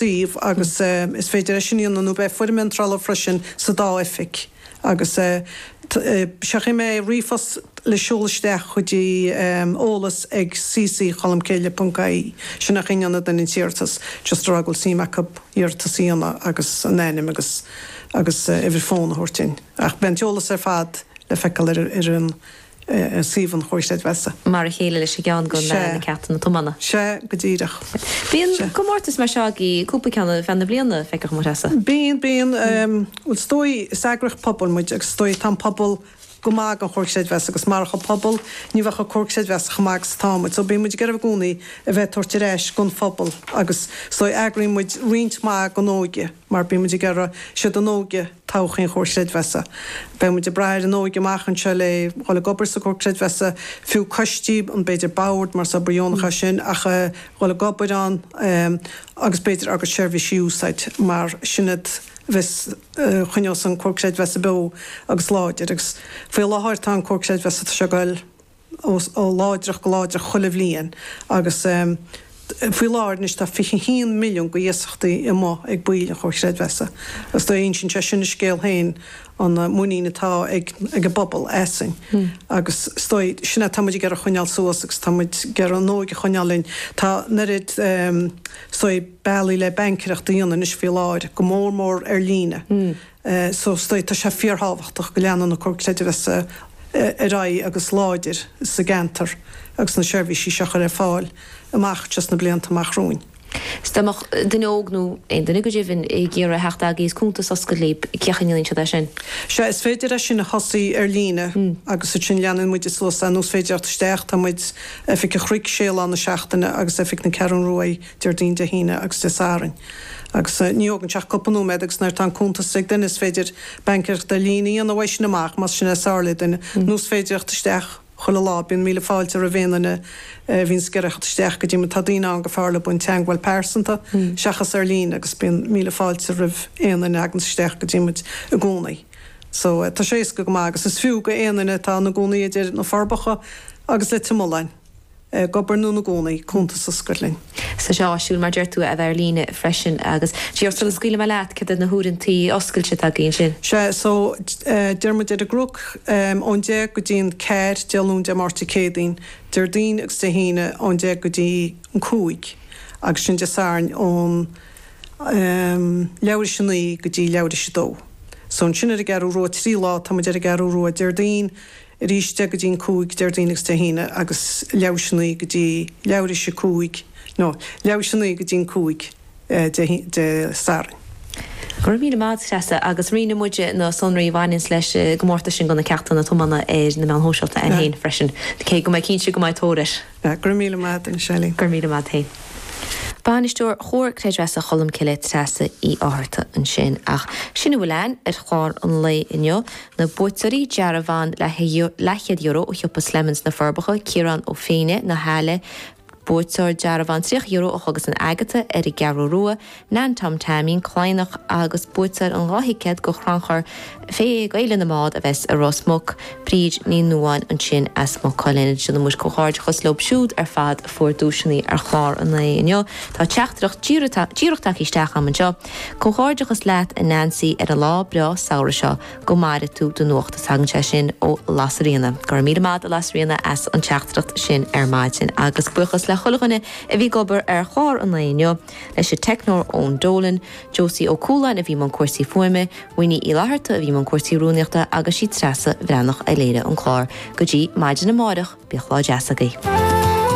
dtaobh agus is féidir é sin a dhéanamh nó beidh foirm iontrála freisin sa dá oifig agus seachas sin ríomhphost a sheoladh isteach go dtí eolas ag cc cholmcille ponc ie. Sin ach ní hann don iarratas just a rá go bhfuil suim acu iarratas a dhéanamh agus a n-ainm agus agus uimhir fón a thabhairt ach beidh an t-eolas ar fad le feiceáil ar an ar suíomh an Chomhair Chreidmheasa. Mar a chéile leis an gceann go na ceisteanna tobanna. Sea go díreach. Bíonn comórtais mar seo ag cúpla ceann ar feadh na bliana, feictear dom a Threasa. Bíonn, bíonn. Bhuel is dóigh, is eagraíocht pobail muid agus is dóigh tá an pobal go maith don Chomhar Creidmheasa agus marach an pobal ní bheadh an Comhar Creidmheasa chomh maith agus atá muid. So bíonn muid ag iarraidh i gcónaí a bheith ag tabhairt ar ais don phobal agus is dóigh eagraíonn muid roinnt maith den óige, mar bíonn muid ag iarraidh is iad an óige todhchaí an Chomhar Creidmheasa. Beidh muid ag brath ar an óige amach anseo le dhul ag obair sa Comhar Creidmheasa, fiú coistí, an b'fhéidir bord mar is obair dheonach é sin ach a dhul ag obair ann agus b'fhéidir agus seirbhísí a úsáid mar sin iad a choinneos an Comhar Creidmheasa beo agus láidir agus faoi láthair tá an Comhar Creidmheasa tá sé ag dul ó láidreacht go láidreacht chuile bhliain agus faoi láthair anois tá 21 milliún de iasachtaí amuigh ag baill an Chomhar Creidmheasa agus is dóigh insíonn sé sin a scéal féin an muinín atá ag ag an bpobal asainn agus is dóigh sin é tá muid ag iarraidh choinneáil suas agus tá muid ag iarraidh an óige choinneáil linn tá an oiread is dóigh bealaí le baincéireacht a dhéanamh anois faoi láthair go mór mór ar líne. eh, so is dóigh, tá sé fíorthábhachtach go leanann an Comhar Creidmheasa, eh, ar aghaidh agus láidir sa gceantar agus na seirbhísí seo a chur ar fáil amach anseo sna blianta amach romhainn. S, Dá mbeadh duine óg nó aon duine go deimhin ag iarraidh a theacht agaibh is cuntas a oscailt libh, cén chaoi a ndéanann siad é sin? Sea, is féidir é sin a thosaí ar líne Mm. agus ansin leanann muide suas é nó is féidir teacht isteach, tá muid, oifig an Chnoic sé lá na seachtaine agus oifig na Ceathrún Rua, Déardaoin, Dé hAoine agus Dé Sathairn. Agus ní thógann sé ach cúpla nóiméad agus nuair atá an cuntas ag duine is féidir baincéireacht ar líne a dhéanamh uaidh sin amach, más sin é is fearr le duine. Nó is féidir theacht isteach chuile lá, bíonn míle fáilte roimh aon duine a bhíonns ag iarraidh a theacht isteach go dtí muid. Tá daoine ann gur fearr leo an teagmháil pearsanta seachas ar líne agus bíonn míle fáilte roimh aon duine a thaganns isteach go dtí muid i gcónaí. So, tá sé éasca go maith agus is fiú do aon duine atá ina gcónaí idir Na Forbacha agus Leitir Mealláin. ag obair nó ina gcónaí, cuntas a oscailt linn. Tá sé áisiúil, mar deir tú, a bheith ar líne freisin agus díreach sula scaoilfidh mé leat céard iad na huaireantaí oscailte atá agaibh ansin. Sea, so, tá muid ar an gCnoc ón deich go dtí an ceathair Dé Luain, Dé Máirt, Dé Céadaoin, Déardaoin agus Dé hAoine ón deich go dtí an cúig agus ansin Dé Sathairn ón leathuair théis a naoi go dtí leathuair théis a dó. So, ansin ar an gCeathrú Rua trí lá tá muid ar an gCeathrú Rua Déardaoin, arís 10 go dtí 5 Déardaoin agus Dé hAoine agus leathuair tar éis 9 go dtí leathuair tar éis 5 nó leathuair tar éis 9 go dtí 5 Dé Sathairn. Go raibh míle maith agat, Treasa, agus roinnfidh muide na sonraí a bhaineanns leis an gcomórtas sin do na ceachtanna tiomána ar na meáin shóisialta againn féin freisin, cé go mbeidh cinnte go mbeidh tóir air. Go raibh míle maith agat. Go raibh míle maith agat. Bainisteoir Chomhar Creidmheasa Cholmcille, Treasa Uí Fhátharta ansin. Ach sin a bhfuil againn ar chlár an lae inniu. Na buaiteoirí, dearbhán leathchéad euro ó Shiopa Slemons sna Forbacha, Ciarán Ó Féinne, na hAille, buaiteoir dearbhán €30 ó Chogadh San Agatha, Eric Gearóruá, Neain Tom Teaimín Cladhnach agus buaiteoir an dhá thicéad go Chrannchur Céad Gaeil na mBád a bheas i Ros Muc, Bríd Ní Nuáin ansin as Maigh Cuilinn. Déanann muid comhghairdeachas leo siúd ar fad a fuair duaiseanna ar chlár an lae inniu. Tá teachtaireacht díreach tagtha isteach agam anseo. Comhghairdeachas leat a Neansaí ar an lá breá samhraidh seo. Go maire tú do nuacht. Is tagann sé sin ó Lasairíona. Go raibh míle maith agat a Lasairíona as an teachtaireacht sin ar maidin. Agus buíochas le chuile dhuine a bhí ag obair ar chlár an lae inniu. Leis an teicneoir Eoin Dolan, Josie Ó Cualáin a bhí i mbun cúrsaí fuaime, Winnie Uí Fhlatharta a bhí i mbun cúrsaí rúnaíochta agus sí Treasa Bhreathnach a léirigh an clár. Go dtí maidin amáireach, bíodh lá deas agaibh.